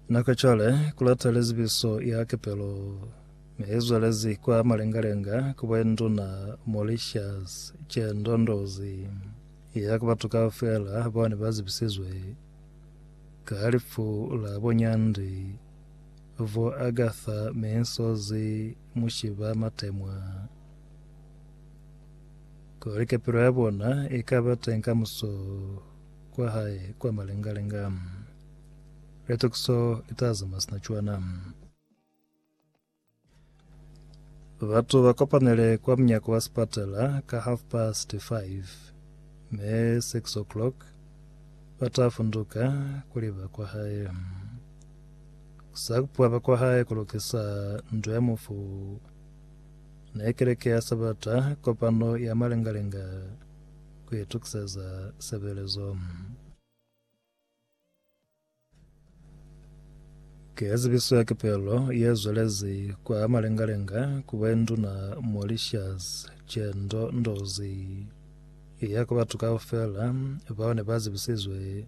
Na ka cwale ku lata lizibiso ya kepelo ne i zwelezi kwa malengalenga ku bwenduna Mauritius ce ndondozi ya ku batu kaufela bao ne ba zibisizwe ka lifu la bonyandi vo Agatha Minsozi Mushiba Matemwa kuli kepelo ya bona i ka ba teng kamuso kwa hae kwa malengalenga. Litokiso li ta zama sina cwana. Batu ba kopanele kwa mnyako wa sipatala ka half past five me six o'clock ba ta funduka kuli ba kwa hae sa kupuwa ba kwa hae ku lokisa ndo ya mufu ne keleke ya sabata kopano ya malengalenga ku itukiseza sebelezo. Ke ya zibiso ya kepelo ye zwelezi kwa malengalenga ku bwenduna Mauritius Chendo Ndozi ya ku batu kaufela bao ne ba zibisizwe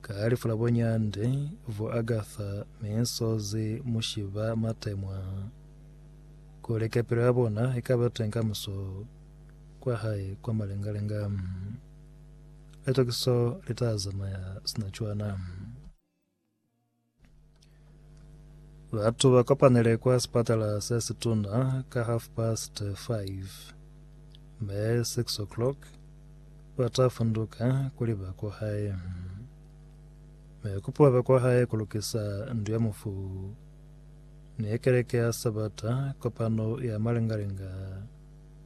ka lifu la bonyande vo Agatha Misozi Mushiba Matemwa kuli kepelo ya bona ikaba teng kamuso kwa hae kwa malengalenga. Litokiso li ta zamaya sina cwana. Batu ba kopanele kwa sipatala se situna ka half past 5 me 6 o'clock ba ta funduka kuli ba kwa hae. Me kupuwa ba kwa hae ku lukisa ndu ya mufu ni ya keleke ya Sabata kopano ya malengalenga